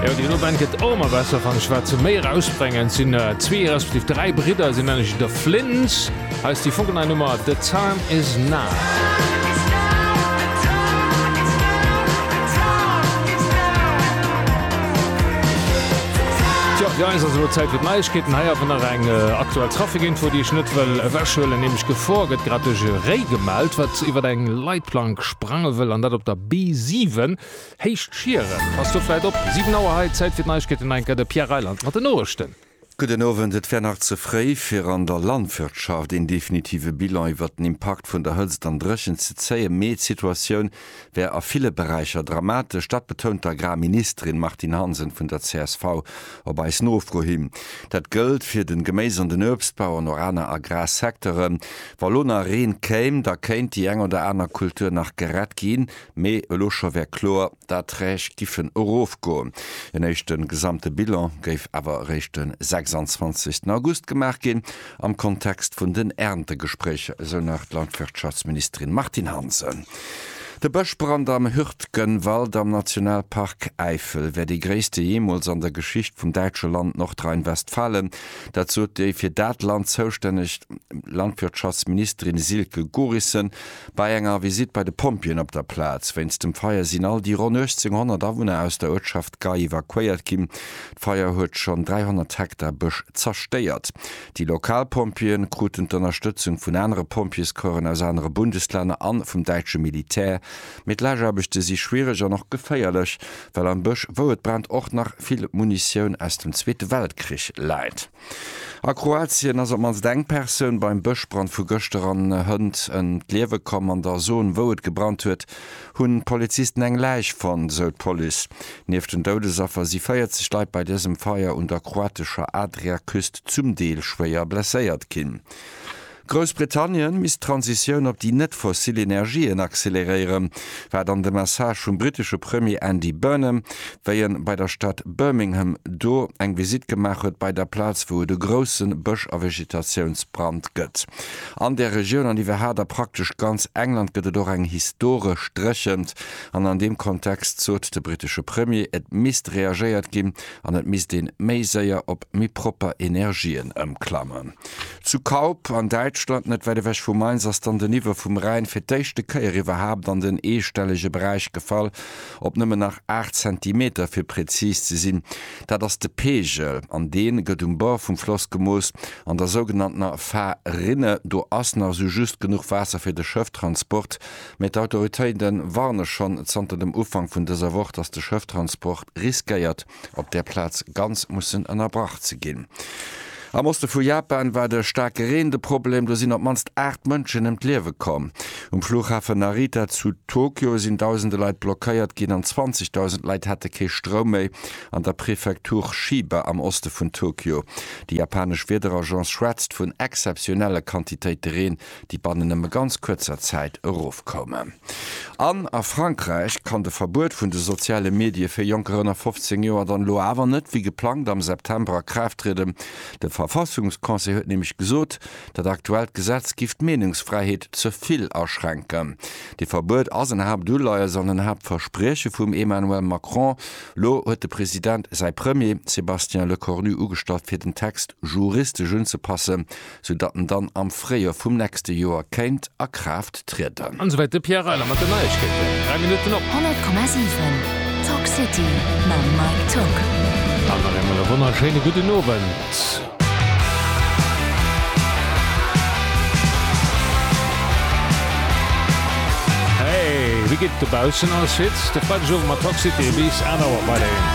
Jo déi Band gëtt och ëmmer besser fannen ech. Wat se méi erausbrengen, et sinn zwee respektiv dräi Bridder, si nennen sech The Flints. Hei ass déi funkelnei Nummer The Time Is Now. Tjo, jo eis ass elo Zäit fir d'Neiegkeeten. Hei awer nach eng aktuell Trafikinfo, déi ech net wëll ewechhuelen, nämlech Gefor gëtt grad duerch e Réi gemellt, wat iwwert eng Leitplank sprange wëll, an dat op der B7, Héicht Schieren. Passt do vläit op. 7 Auer hei, Zäit fir d'Neiegkeeten, hei enker de Pierre Reyland mat den Noriichten. Gudden Owend. Et wär nach ze fréi fir an der Landwirtschaft een definitive Bilan iwwert den Impakt vun der Hëtzt an Dréchent ze zéien, mee d'Situatioun wär a ville Beräicher dramatesch. Dat betount d'Agrarministerin Martine Hansen vun der csv. Op eis Nofro hin, dat gëllt fir den Geméis an den Uebstbau an och aner Agrarsecteuren, Wa lo nach Reen kéim, da kéint déi eng oder aner Kultur nach gerett ginn, mee elo scho wär kloer, d'Erträg giffen erofgoen. En éischte gesamte Bilan géif awer eréischt de 26 August gemaach ginn. am Kontext vun den Erntegespréicher, esou nach d'Landwirtschaftsministerin Martine Hansen. De Bëschbrand am Hürtgenwald am Nationalpark Äifel wär dee gréisste jeemools an der Geschicht vum däitsche Land Nordrhein-Westfalen. Dat sot déi fir dat Land zoustänneg Landwirtschaftsministerin Silke Gorissen bei enger Visitt bei de Pompjeeën op der Plaz. Wéinst dem Feier sinn all déi ronn 1.800 Awunner aus der Uertschaft Gay evakuéiert ginn. D'Feier huet schonn 300 Hektar Bësch zerstéiert. Déi lokal Pompjeeë kruten d'Ënnerstëtzung vun anere Pompjeescorpsen aus anere Bundeslänner an vum däitsche Militär. Mee d'Lageaarbechte si schwiereg an och geféierlech, well am Bësch, wou et brennt, och nach vill Munitioun aus dem Zweete Weltkrich läit. A Kroatien ass op mannst eng Persoun beim Bëschbrand vu gëschter an Hënt ëm d'Liewe komm. An der Zon, wou et gebrannt huet, hunn d'Polizisten eng Läich fonnt, esou d'Police. Nieft den Doudesaffer si 40 Leit bei dësem Feier un der kroatescher Adriaküst zum Deel schwéier blesséiert ginn. Groussbritannien misst d'Transitioun op déi net-fossil Energien acceleréieren, war dann de Message vum britesche Premier Andy Burnham, wéi en bei der Stad Birmingham do eng Visitt gemaach huet bei der Plaz wou et e groussen Bësch a Vegetatiounsbrand gëtt an där Regioun an iwwerhaat a praktesch ganz England gëtt et och eng historesch dréchent an an deem Kontext sot de britesche Premier et misst reagéiert ginn an et misst een méi séier op méi propper Energien ëmklammen. Zu Kaup an Däitschland, net wäit ewech vu Mainz, ass dann den Niveau vum Rhäin fir d'éischte Kéier iwwerhaapt an den eestellege Beräich gefall, op nëmmen nach 8 Zentimeter fir präzis ze sinn. Dat ass de Peegel an dee gëtt um Bord vum Floss gemooss, an der sougenanntener Fa-rinne. Do ass nach sou just genuch Waasser fir de Schëfftransport Mee d'Autoritéite warne schonn zanter dem Ufank vun dëser Woch, datt de Schrëfttransport riskéiert, op där Plaz ganz mussen ënnerbrach ze ginn. Am Oste vu Japan war de staarke Reen de Problem. Do sinn op d'mannst 8 Mënschen ëm d'Liewe komm. Um Fluchhafe Narita zu Tokio sinn dausende Leit blockéiert ginn an 20.000 Leit hate kee Stroum méi. An der Prefektur Chiba am Oste vun Tokio. Déi japanesch Wiederagence schwätzt vun exzeptionelle Quantitéite Reen, déi bannen nëmme ganz kuerzer Zäit erofkoumen. An a Frankräich kann de Verbuet vun de soziale Medie fir Jonker ënner 15 Joer dann elo awer net wéi geplangt am September a Kraaft trieden. De Verfassungsconseil huet nämlech gesot, dat aktuellt Gesetz giff d'Meenungsfräiheet ze vill aschränken. Dee Verbuet ass en Haaptuleies an en Haaptversprieche vum Emmanuel Macron. Elo huet de President säi Premier Sébastien Lecornu ugestallt fir den Text juristesch unzepassen. sou datt en dann am Fréijoer vum nächste Joer kéint a Kraaft trieden. An esouwäit de Pierre Reyler mat den Neiegkeeten. 3 Minutten op. 100,7 Talk City mam Mike Togg. An nach eemol e wonnerschéine gudden Owend. Hey, wéi geet et dobaussen? Alles fit? De Freidegowend mat Talk City bis 1 Auer bei der Een.